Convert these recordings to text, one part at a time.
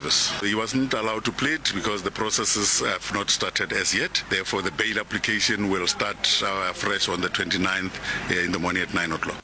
Yes. He wasn't allowed to plead because the processes have not started as yet. Therefore, the bail application will start uh, fresh on the 29th uh, in the morning at 9 o'clock.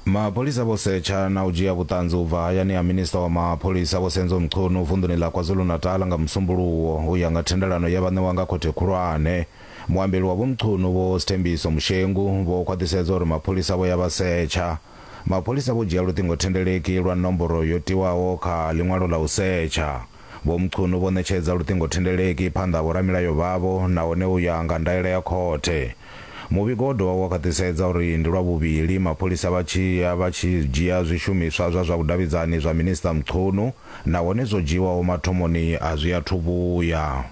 mapholisa vho setsha na u dzhia vhuṱanzi u bva hayani ha minista wa mapholisa vho senzo mchunu vunḓuni ḽa kwazulu-natal nga musumbuluwo u ya nga thendelano ye vha ṋewa nga khothe khulwane muambeli wa vho mchunu vho sthembiso mushengu vho khwaṱhisedza uri mapholisa vho ya vha setsha Mapholisa vho dzhia luṱingothendeleki lwa nomboro yo tiwaho kha ḽiṅwalo ḽa u setsha. Vho Mchunu vho ṋetshedza luṱingothendeleki phanḓa ha vhoramilayo vhavho nahone u ya nga ndaela ya khothe. Muvhigo wo dovha wa khwaṱhisedza uri ndi lwa vhuvhili mapholisa vha tshi ya vha tshi dzhia zwishumiswa zwa zwa vhudavhidzani zwa Minisṱa Mchunu nahone zwo dzhiiwaho mathomoni a zwi athu vhuya.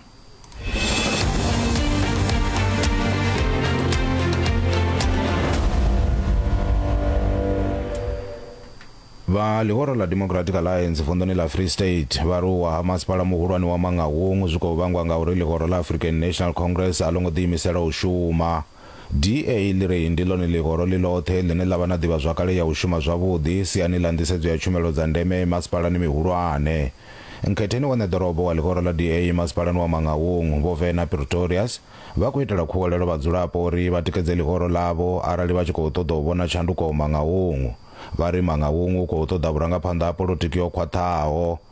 vha ḽihoro ḽa democratic alliance vunḓuni ḽa free state vha ri u wa ha masipala muhulwane wa mangaung zwi khou vhangwa ngauri ḽihoro ḽa african national congress a ḽo ngo ḓiimisela u shuma DA ḽi ri ndi ḽone ḽihoro ḽi ḽoṱhe ḽine ḽa vha na ḓivhazwakale ya u shuma zwavhuḓi siani ḽa nḓisedzo ya tshumelo dza ndeme masipalani mihulwane. Nkhetheni wa ṋeḓorobo wa ḽihoro ḽa DA masipalani wa Mangaung, Vho Werner Pretorius, vha khou itela khuwelelo vhadzulapo uri vha tikedze ḽihoro ḽavho arali vha tshi khou ṱoḓa u vhona tshanduko Mangaung. Vha ri Mangaung u khou ṱoḓa vhurangaphanḓa ha polotiki ho khwaṱhaho.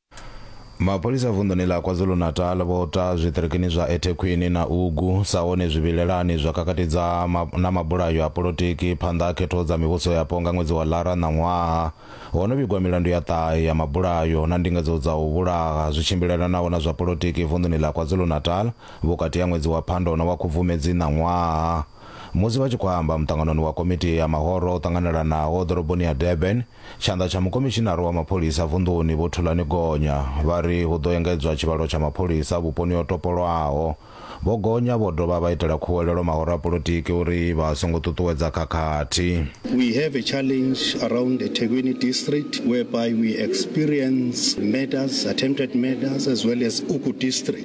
mapholisa vunḓuni ḽa kwazulu-natal vho ta zwiṱirikini zwa ethekhwini na ugu sa hone zwivhilelani zwa kakatidza ma, na mabulayo a polotiki phanḓa ha khetho dza mivhuso yapo nga ṅwedzi wa lara ṋaṅwaha ho no vhigwa milandu ya ṱahe ya mabulayo na ndingedzo dza u vhulaha zwi tshimbilelanaho na zwa polotiki vunḓuni ḽa kwazulu-natal vhukati ha ṅwedzi wa phando na wa khubvumedzi ṋaṅwaha musi vha tshi khou amba muṱanganoni wa komiti ya mahoro o ṱanganelanaho ḓoroboni ya durban Tshanḓa tsha mukomishinara wa mapholisa vunḓuni Vho Thulani Gonya vha ri hu ḓo engedzwa tshivhalo tsha mapholisa vhuponi ho topolwaho. Vho Gonya vho dovha vha itela khuwelelo mahoro a polotiki uri vha songo ṱuṱuwedza khakhathi. We have a challenge around eThekwini district whereby we experience murders, attempted murders as well as Uku district.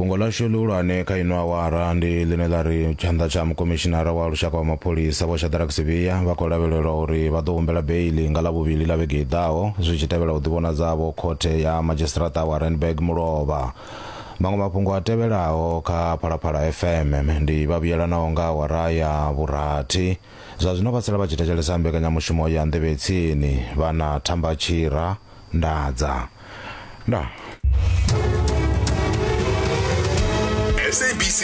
fhungo ḽashu ḽihulwane kha ino awara ndi ḽine ḽa ri tshanḓa tsha mukomishinara wa lushaka wa mapholisa vho shadrack sivhiya vha khou lavhelelwa uri vha ḓo humbela beili nga ḽavhuvhili ḽa vhege i ḓaho zwi tshi tevhela u ḓivhonadzavho khothe ya madzhisiṱiraṱa wa randburg mulovha Maṅwe mafhungo a tevhelaho kha Phalaphala FM ndi vha vhuyelanaho nga awara ya vhurathi. Zwa zwino vha sala vha tshi thetshelesa mbekanyamushumo ya Nḓevhe Tsini vha na Thamba Tshira, Ndadza. Ndaa. SABC